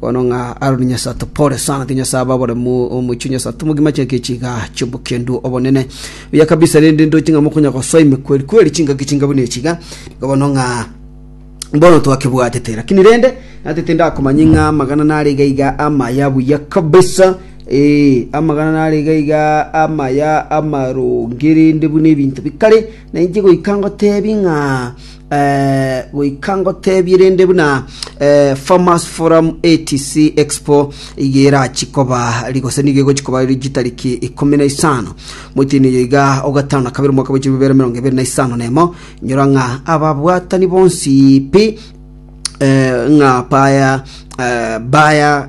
Bono ng'a Aroni Nyasae atopore sana, tiga Nyasae abe aboremu omochie o Nyasae tomogima chingaki chiga chi'obokendu obonene. Buya kabisa rende ndoche ng'a mokonya gosoa emekweri kweri chingaki chinga buna echi iga, nigo bono ng'a bono twakebwatete lakini rende natete ndakomanye ng'a amagana nare iga iga amaya buya kabisa ee amagana nare iga iga amaya amaronge rende buna ebinto bikare na inche goika ngotebie ng'a goika ngoteebie rende buna Farmers Forum etc. Expo iga erachie koba, ri- gose nigo egochia koba ri chitariki ikomi na isano mwetienyi oyo iga o gatano na kabere omwaka bwa chibibere emerongo ebere na isano na emo, inyora ng'a ababwatani bonsi pi eh, ng'a baya eh, baya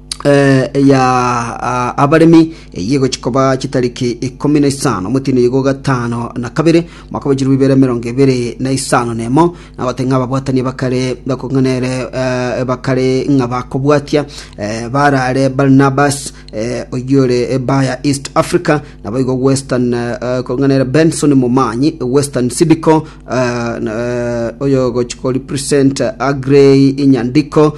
eh, eya ah, abaremi eyio egochi koba chitariki ikomi na isano omotino igo gatano na kabere mwaka wa chirumi bere emerongo ebere na isano na emo nagote ng'a ababwatani bakare bakong'anere eh, bakare ng'a bakobwatia eh, barare barnabas eh, oyore baya east africa nabo igo western eh, eh, kong'anere benson momanyi western sidico eh, na- eh, oyo gochi ko represent agrey inyandiko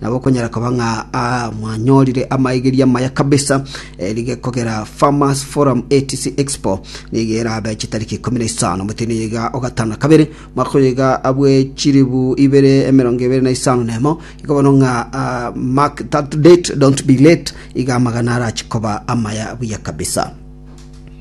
Nabo okonyara koba ng'a mwanyorire amaigeria amaya kabisa, erige kogera Farmers Forum etc Expo nigo erabe chitariki ikomi na isano omotini iga ogatano na kabere mwaka oyo iga abwe chiribu ibere emerongo ebere na isano na emo igo bono ng'a ah, mark that date don't be late iga amagana arachi koba amaya buya kabisa